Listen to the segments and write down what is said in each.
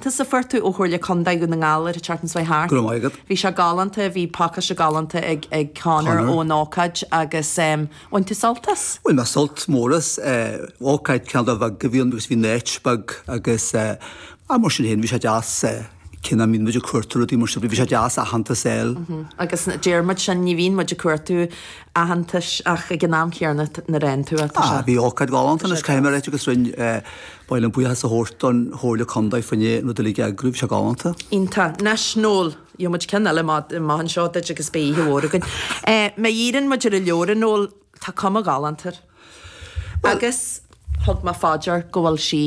Tús, fuair tú ó Chomhairle Contae Dhún na nGall ar an Charlton Sway Hearth. Go raibh maith agat. Bhí sé galánta, bhí pacáiste galánta ag Conor ón ócáid agus bhain tú sult as. Bhain mé sult mór as. Ócáid cineál de bheag a bhí ann agus bhí neat beag agus ach mar sin féin bhí sé deas cé nach mbíonn muid ag cuartú rudaí mar sin bhí sé deas aitheantas a fháil. Agus deir muid sin, ní bhíonn muid ag cuartú aitheantais ach ag an am chéanna nuair a fhaigheann tú é tá sé. Bhí ócáid galánta anois caithfidh mé a rá duit agus rinne Ba mhaith liom buíochas a thabhairt don Chomhairle Contae fá choinne an rud uilig a eagrú, bhí sé galánta. Iontach. Náisiúnta. Gheobhaimid ceann eile má, má tagann seo duit agus beidh oíche mhór againn. Eh, má dhíríonn muid ar an leabhar Eoghain, ól, tá cuma ghalánta air. Bhuel. Agus thug mé faoi deara go bhfuil sí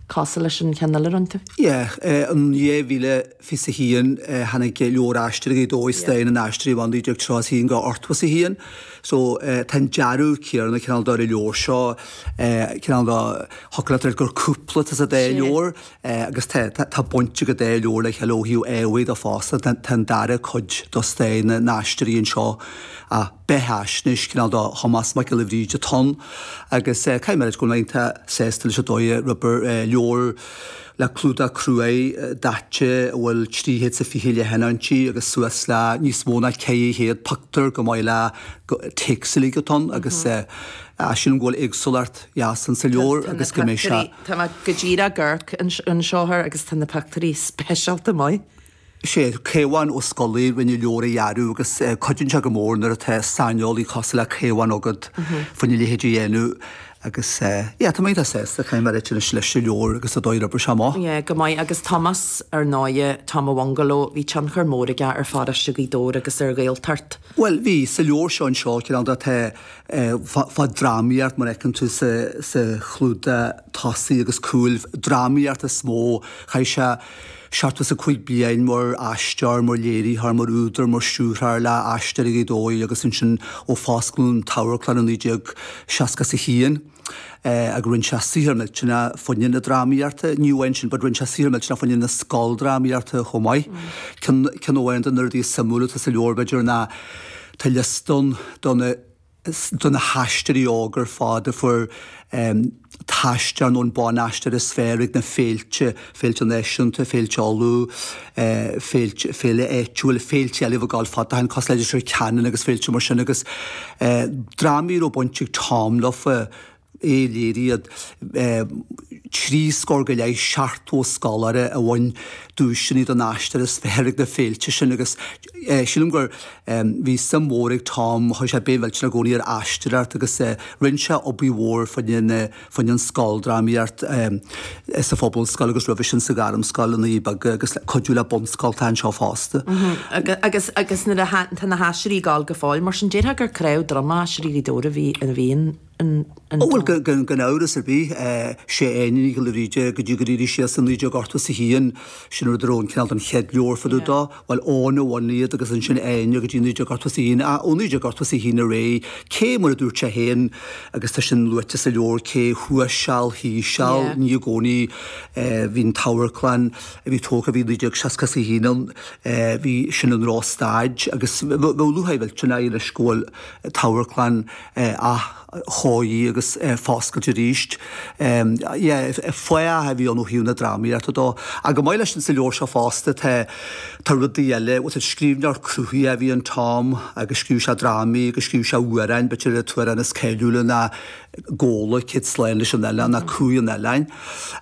cosúil leis an cheann eile roinnte. Yeah, eh, an dhá mhíle. fiche is a haon, tháinig leabhar Stairsheanchas Ghaoth Dobhair i mí an 12 Tráth 1 go Ortbhus 1. So, tá an dearadh céanna cineál de ar an leabhar seo, cineál de shocraigh muid air gur cúpla tusa d'aon leabhar agus tá tá baint ag an dá leabhar le chéile ó thaobh ábhair de fosta. Tá tá an dara cuid de stair na nAisteoirí anseo is beithfhaisnéis, cineál de Thomás Mac Giolla Bhríde atá ann agus caithfidh mé a rá go bhfuil mé iontach sásta leis an dóigh ar oibrigh an leabhar le clúdach cruaidh daite a bhfuil 320 leathanach inti agus suas le níos mó ná 400 pictiúr chomh maith leis an téacs uilig atá ann agus sílim go bhfuil éagsúlacht dheas in sa leabhar agus go mbeidh sé. Tá mé go díreach ag amharc anseo air agus tá na pictiúirí speisialta maith. Is é Caomhán Ó Scolaí a rinne an leabhar a dhearadh agus cuidíonn sé go mór nuair atá saineolaí cosúil le Caomhán agat fá choinne a leithéid a dhéanamh agus, yeah, tá mé iontach sásta. Caithfidh mé a ráit anois leis an leabhar agus an dóigh ar oibrigh sé amach. Yeah, go maith. Agus Tomás, ar ndóighe, Tom an Bhungalow, bhí tionchar mór aige ar pharóiste Ghaoth Dobhair agus ar Ghaeltacht. Bhuel, bhí. Sa leabhar seo anseo, cineál de, tá fán drámaíocht, mar a fheiceann tú sa chlúdach tosaigh agus cúil, drámaíocht is mó. Chaith sé. seachtó is a cúig bliain mar aisteoir, mar léiritheoir, mar údar, mar stiúrthóir, le hAisteoirí Ghaoth Dobhair agus ansin ó fosclaíodh an amharclann i 1961 agus rinne sé saothar millteanach fá choinne na drámaíochta, ní amháin sin but rinne sé saothar millteanach fá choinne na scoildrámaíochta chomh maith. Ceann amháin de na rudaí is suimiúla atá sa leabhar b'fhéidir ná tá liosta ann de na. de na haisteoirí óga ar fad a fuair Aisteoir nó Ban-Aisteoir is Fearr ag na féilte, Féilte Náisiúnta, Féilte Uladh, Féilte, Féile an tSléibhe, Féilte eile a bhíodh ag gabháil fad ó shin cosúil leis i dTír Chonaill agus féilte mar sin agus drámaí a raibh baint ag Tom leofa. Léirigh iad trí scór go leith seachtó scoláire a bhain duaiseanna don aisteoir is fearr ag na féilte sin agus sílim gur bhí suim mhór ag Tom, chuir sé béim mhillteanach i gcónaí ar aisteoireacht agus rinne sé obair mhór faoin an scoildrámaíocht sa phobalscoil agus roimhe sin sa ghairmscoil i nDoirí Beaga agus le cuidiú le bunscoltacha anseo fosta. Agus tá na hAisteoirí ag dul go fóill mar sin déarfá gur cnámh droma Aisteoirí Ghaoth Dobhair a bhí ann Á bhuel gan amhras ar bith, sé Áine Nic Giolla Bhríde, go dtí gur éirigh sí as i 19 ochtó is a haon, sin nuair a raibh an cineál den chéad leabhar fá dtaobh dó, bhuel, Eoghan a bhunaigh iad agus ansin Áine go dtí 19 ochtó is a haon, a, ó 19 ochtó is a haon ar aghaidh, cé, mar a dúirt sé féin, agus tá sin luaite sa leabhar, cé thuas seal, thíos seal, a bhí i gcónaí, bhí an t-amharclann a bhí tógtha, bhí 1960 is a haon ann, bhí, sin i ndrochstaid, agus bheadh luath aghaidh, bheadh sin aghaidh leis go bhfuil t-amharclann, athchóiriú agus foscailt arís. Fathach a bhí ann ó thaobh na drámaíochta dó. Ach chomh maith leis sin sa leabhar seo fosta tá rudaí eile, bhuel is scríbhneoir cruthaitheach a bhí in Tom agus scríobh sé drámaí agus scríobh sé amhráin, b'fhéidir an t-amhrán is cáiliúla ná Gabhla, Céad Slán leis an Oileán nó Cumhaidh an Oileáin.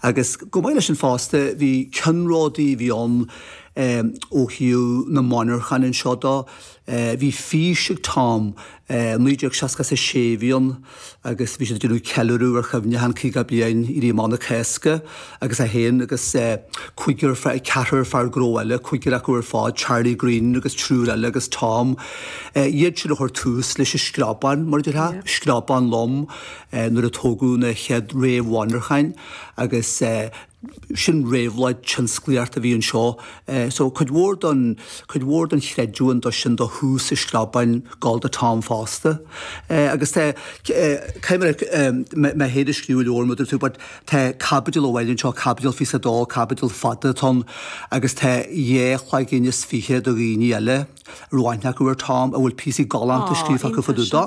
Agus chomh maith leis sin fosta bhí ceannródaí a bhí ann ó thaobh na monarchan anseo dó, Bhí fís ag Tom. 1960 is 6 a bhí ann agus bhí siad ag déanamh ceiliúradh ar chuimhneachán an 50 bliain Éirí Amach na Cásca agus é féin agus cúigear fear, ceathrar fear gnó eile, cúigear acu ar fad, Charlie Green agus triúr eile agus Tom, iad siúd a chuir tús leis an Screabán, mar a déarfá, screabán lom nuair a tógadh na chéad réamh-mhonarcháin agus. sin réabhlóid tionsclaíochta a bhí anseo so cuid mhór don cuid mhór don chreidiúint do sin do thús an Screabáin ag dul do Tom fosta agus tá cé gur mé mé féin a scríobh an leabhar mar a deir tú but tá caibidil amháin anseo caibidil fiche is a dó caibidil fada atá ann agus tá dhá chloigeann is fiche do dhaoine eile A raibh aithne acu ar Tom a bhfuil píosaí galánta scríofa acu fá dtaobh dó,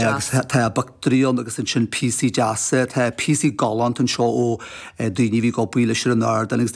agus tá a bpictiúirí ann agus ansin píosaí deasa, tá píosaí galánta anseo ó dhaoine a bhí ag obair leis ar an ardán agus daoine.